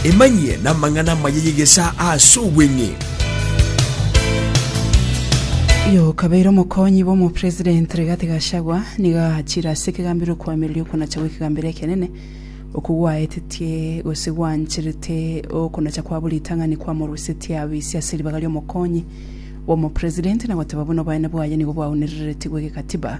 Emanyie namang'ana amaya y'egesaa aase obweng'e. Oyo okabeire omokonyi bw'omopresident Rigathi Gachagua nigo aachire ase ekegambero okoamereria okonacha gw'ekegambero ekenene, okwo gwaetetie gose gwancherete okonacha kwabo ritang'ani kwamorusetie abe ise ase ribaga ri'omokonyi bw'omopresident na goteba buna obonene bwaye nigo bwaunereretigwe kegatiba.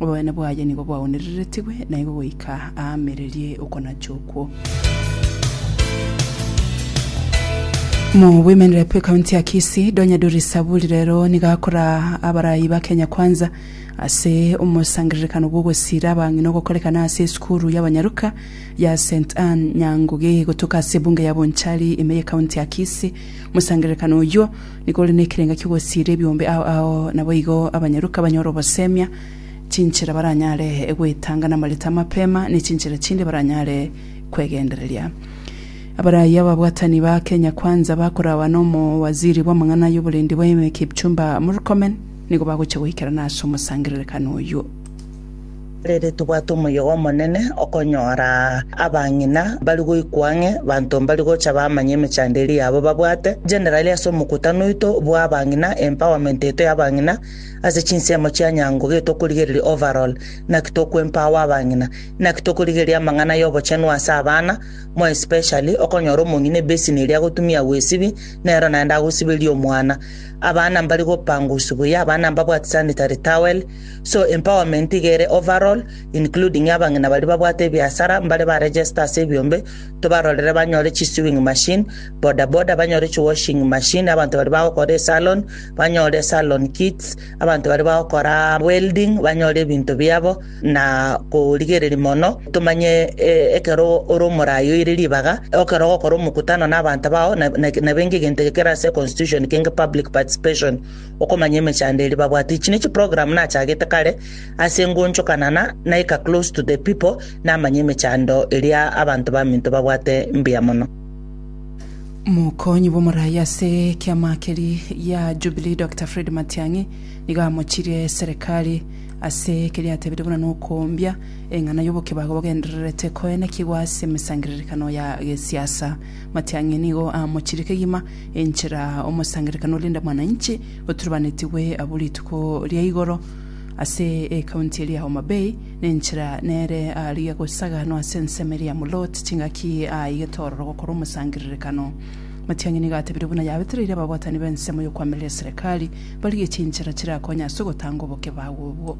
Oboene bwaye nigo bwaonereretigwe, na igo goika aamererie okonacha okwo. Mu Women Rep ekaunti ya Kisii, Donya Dori Saburi rero nigo akora abarayi ba Kenya Kwanza ase omosangererekano bw'ogosira abang'ina ogokorekana ase esukuru y'abanyaruka ya St Ann Nyangugi gotoka ase ebunge ya Bonchari ime y'ekaunti ya Kisii. Omosangererekano oyio Nigo ore nekerengo ki'ogosiria ebiombe ao ao, naboigo abanyaruka banyore ogosemia chinchera baranyare goetanga namareta amapema, ne chinchera chinde baranyare kwegendereria. Abaraiyo ababwatani ba Kenya Kwanza bakorawa n'omowaziri bw'amang'ana y'oborendi bw'ense Kipchumba Murkomen nigo bagochia goikerana ase omosangererekano oyio. Erinde tobwate omoyega omonene okonyora abang'ina mbari goikwa ang'e, banto mbari gocha bamanye emechando eria yabo babwate, generally ase omokutano oito bw'abang'ina, empowerment yaito y'abang'ina ase chinsemo chia nyango gaki tokorigereria overall, naki toko empower abang'ina, naki tokorigereria amang'ana y'obochenu ase abana, more especially okonyora omong'ina ebassin eria agotumia agwesibia nero naende agosiberia omwana. Abana mbari gopangus buya, abana mbabwati sanitary towel. So empowerment iga ere overall, including abang'ina baria babwate ebiasara, mbare ba register ase ebiombe, tobarorere banyore chi sewing machine, boda boda banyore chi washing machine, abanto baria bagokora esalon banyore salon kits, abanto baria bagokora welding banyore ebinto biabo, na korigereria mono tomanye eh, ekero ore omorayi oire ribaga, ekero ogokora omokutano na abanto bao, na- na- nabenge egento eke kere ase constitution kenge public participation, Okomanya emechando eria babwate. Echi ne chiprogram nachagete kare ase engonchokanana naika close to the people namanye emechando eria abanto baminto babwate mbuya mono. Mokonyi bw'omorai ase ekiama keri gia Jubilee Doctor Fred Matiang'i nigo amochirie serikali ase ekeri atebete buna nokombia eng'ana y'obokebago bogendererete koenekigwa ase emesangererekano ya gesiasa. Matiang'i nigo amochirie kegima Enchera omosangererekano o Linda Mwananchi oturubanetigwe abwo rituko ria igoro ase ekaunti eria Homa Bay, nenchera nere aria gosaganwa ase ensemo eria Mulot chingaki aa igetororo gokora omosangererekano. Matiang'i nigo atebire buna yabetereire ababwatani b'ensemo y'okwamireria serikali barigie chinchera chirakonye ase ogotanga obokebao obwo.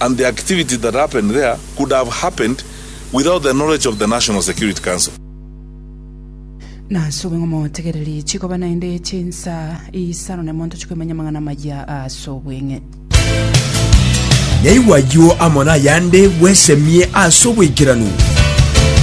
and the activities that happened there could have happened without the knowledge of the National Security Council. Nase obong'amotegererie chikoba naende chinsa isano na emonto chikoimanya amang'ana amaya ase obweng'e. Naigwa ayio amo nayande bwesemie ase oboikeranu.